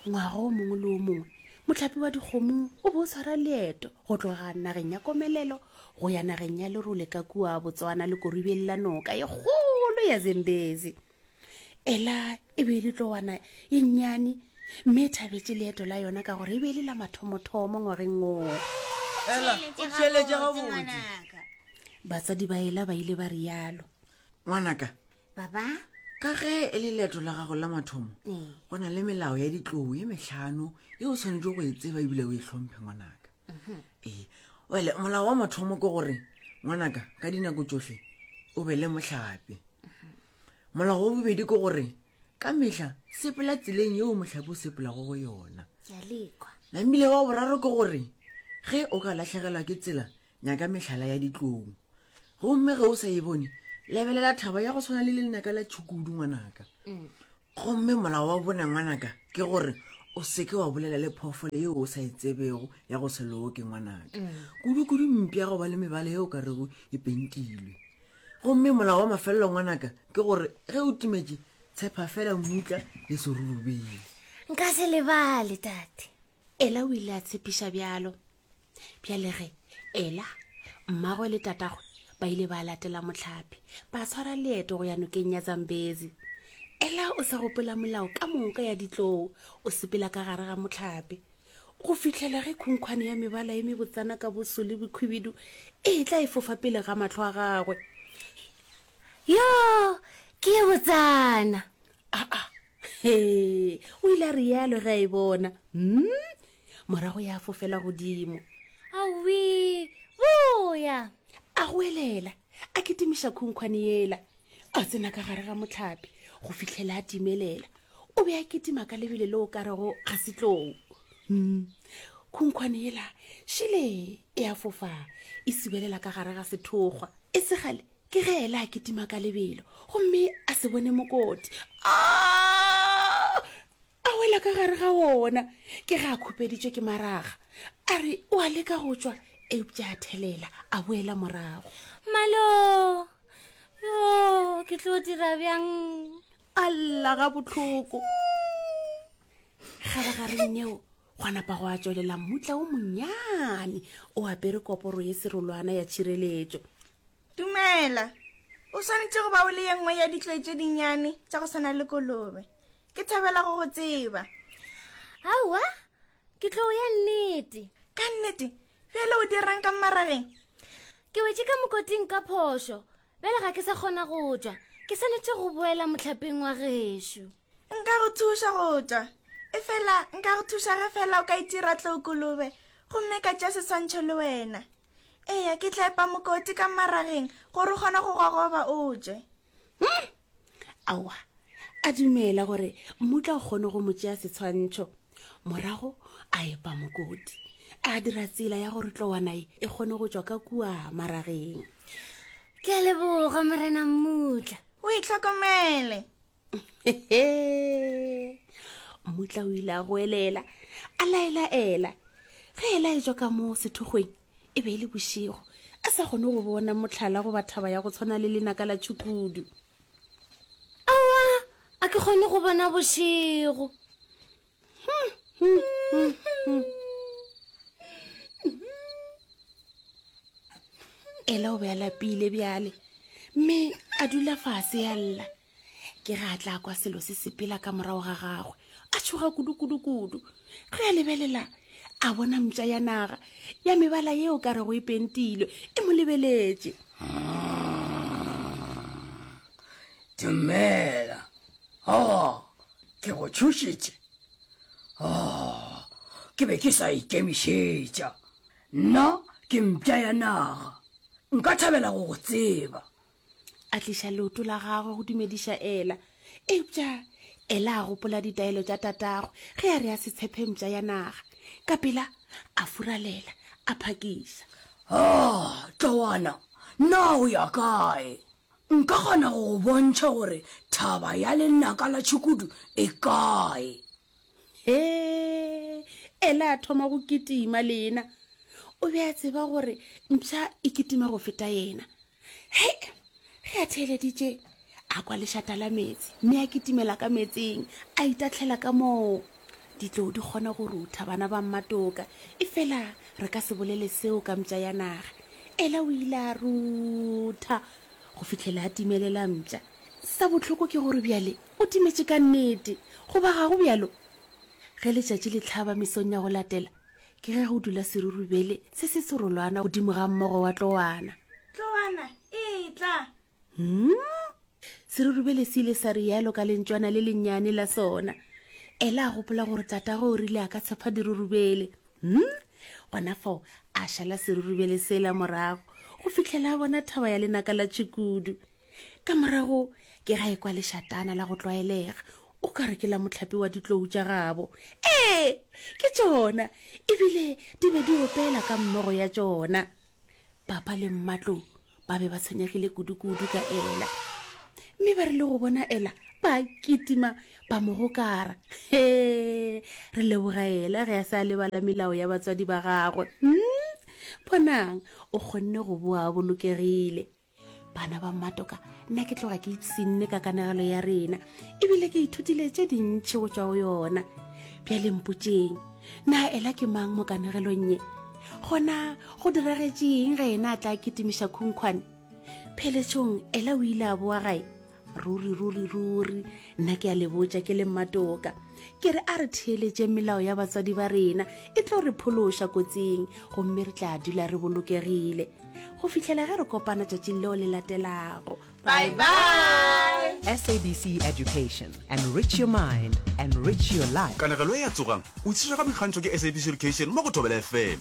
ngwaga o mongwe le o mongwe motlhapi wa dikgomo o bo o tshwara leeto go tloga nageng ya komelelo go ya nageng ya lerole ka kua botswana le koribeng la noka e kgolo ya zembezi ela e be e le tlowana e nnyane mme e thabetse leeto la yona ka gore e be e le la mathomothomo ngwageng oo batsadi ba ela ba ile ba rialo ngwanaka baba ka ge e le leeto la gago la mathomo ee. go na le melao ya ditlou e metlhano e o tshwanetse go e tseba ebile o e tlhomphe ngwanaka mhm. ee wele molao wa mathomo ke gore ngwanaka ka dinako tsotlhe o be le motlhape mhm. molao wa bobedi ke gore ka metlha sepela tseleng yeo motlhape o sepelago go yona namile wa boraro ke gore ge o ka latlhegelwa ke tsela nyaka mehlala ya ditlong gomme ge o sa e bone lebelela thaba ya go tshwana le lenaka la tšhukudu ngwanaka mm. gomme molao wa bone ngwanaka ke gore o seke wa bolela le phoofolo yeo o sa e tsebego ya go se loke ngwanaka mm. kudu-kudu mpi ya go ba le mebala yeo ka rego e pentilwe gomme molao wa mafelelo ngwanaka ke gore ge o timetše tshepa fela mmutla le serurubele nka se lebale tate ela o ile a tshepiša bjalo bjalege ela mmagwe le tatagwe ba ile ba latela motlhapi ba tshwara leeto go ya nokeng ya zambezi ela o sa gopola molao ka moka ya ditloo o sepela ka gare ga motlhapi go fitlhela ge khunkhwane ya mebala e mebotsana ka boso le bokhwibidu e tla e fofa pele ga matlho a gagwe yo ke e botsana aa he o ile a rialo ge a e bona mm morago ya fofela godimo awi boya a go elela a kitimiša khunkhwane yela a tsena ka gare ga motlhapi go fitlhela a timelela o be a kitima ka lebele le o ka rego ga setlou mm. khunkhwane yela šele e a fofa e sibelela ka gare ga sethokgwa e segale ke ge ela a kitima ka lebelo gomme a se bone mokoti a A wela ka gare ga wona, ke ge a khupeditšwe ke maraga, a re o a leka go tšwa, eupša a thelela, a boela morago. Malo! Yo, ke tlo dira bjang? A lla ga bohloko. Kgabagareng yeo, gwa napa gwa tšwelela mmutla o monnyane o apere koporo ye serolwana ya tšhireletšo. Dumela. O swanetše go ba o le ye nngwe ya ditloi tše dinnyane tša go swana le kolobe. ke thabela go go tseba aowa ke tlo ya nnete ka nnete bjale o dirang ka mmarageng ke wetse ka mokoting ka phošo bjale ga ke sa kgona go tswa ke swanetse go boela motlhapeng wa gešo nka go thuša go tswa e fela nka go thuša ge fela o ka itira tlookolobe gomme ka tša seswantšho le wena eya ke tla epa mokoti ka mmarageng gore o kgone go gogoba o tswe hmm? aowa a dumela gore mmutla o kgone go mo tšea setshwantšho morago a epa mokoti a dira tsela ya gore tlowanae e kgone go tswa ka kua marageng ke a leboga morena mmutla o e tlhokomele mmutla o ile a goelela a laelaela ge e laetswa ka moo sethokgweng e be e le bošego a sa kgone go bona motlhala goba thaba ya go tshwana le lenaka la tšhukudu awa a ke kgone go bona bošego ela o be a lapile bjale mme a dula fase ya lla ke ge a tla kwa selo se sepela ka morago ga gagwe a tshoga kudu-kudu-kudu ge a lebelela a bona mpša ya naga ya mebala yeo ka rego e pentilwe e mo lebeletše dumela o oh, ke go tšhošitše o oh, ke be ke sa ikemišetša nna ke mpša ya naga nka thabela go go tseba a tliša leoto la gagwe go dumediša ela eupša ela a gopola ditaelo tša tatagwe ge a re a se tshephe mpša ya naga ka pela a furalela a phakiša o oh, tlowana na o ya kae nka kgona go go bontšha gore thaba ya lenaka la tšhukudu e kae he ela a thoma go kitima le ena o be a tseba gore mpša e kitima go feta ena he ge a theeleditše a kwa lešata la metsi mme a kitimela ka metsing a itatlhela ka moo ditlou di kgona go rutha bana ba mmatoka e fela re ka se bolele seo ka mpša ya naga ela o ile a rutha go fitlhela a timelela mpša sa botlhoko ke gore bjale O timetše ka nnete, goba ga go bjalo? Ge letšatši le hlaba mesong ya go latela, ke ge go dula serurubele se se serolwana godimo ga mmogo wa tlowana. Tlowana e tla! Hmm? Serurubele se ile sa rialo ka lentšwana le lennyane la sona. Ela a gopola gore tatago o rile a ka tshepa dirurubele. Hmm? Gona fao a šala serurubele sela morago go fihlela a bona thaba ya lenaka la tšhikudu. ka morago ke ga e kwa lešatana la go tlwaelega o ka re ke la motlhapi wa ditlou tša gabo ee ke tšona ebile di be di opela ka mmogo ya tšona papa le mmatlou ba be ba tshwenyegile kudu-kudu ka ela mme ba re le go bona ela ba kitima ba mo gokara he re leboga ela ge a se a lebala melao ya batswadi ba gagwe mm? bonang o kgonne go boa bolokegile bana ba mmatoka nna ke tloga ke ipsinne ka kanagelo ya rena ebile ke ithutile tše dintšhi go tswa go yona bjale mpotseng na ela ke mang mo kanegelong ye gona go diragetšeng ge ena a tla ketimiša khunkhwane pheletšong ela o ile a boa gae ruri ruri ruri nna ke a le botša ke le mmatoka ke re a re theeletše melao ya batswadi ba rena e tlo re phološa kotsing gomme re tla dula re bolokegile go fitlhela ge re kopana tšatšing leo le latelago bye bye sabc education enrich your mind enrich your life kanegelo e ya tsogang o itshešega boikgantšho ke sabc education mo go thobela fm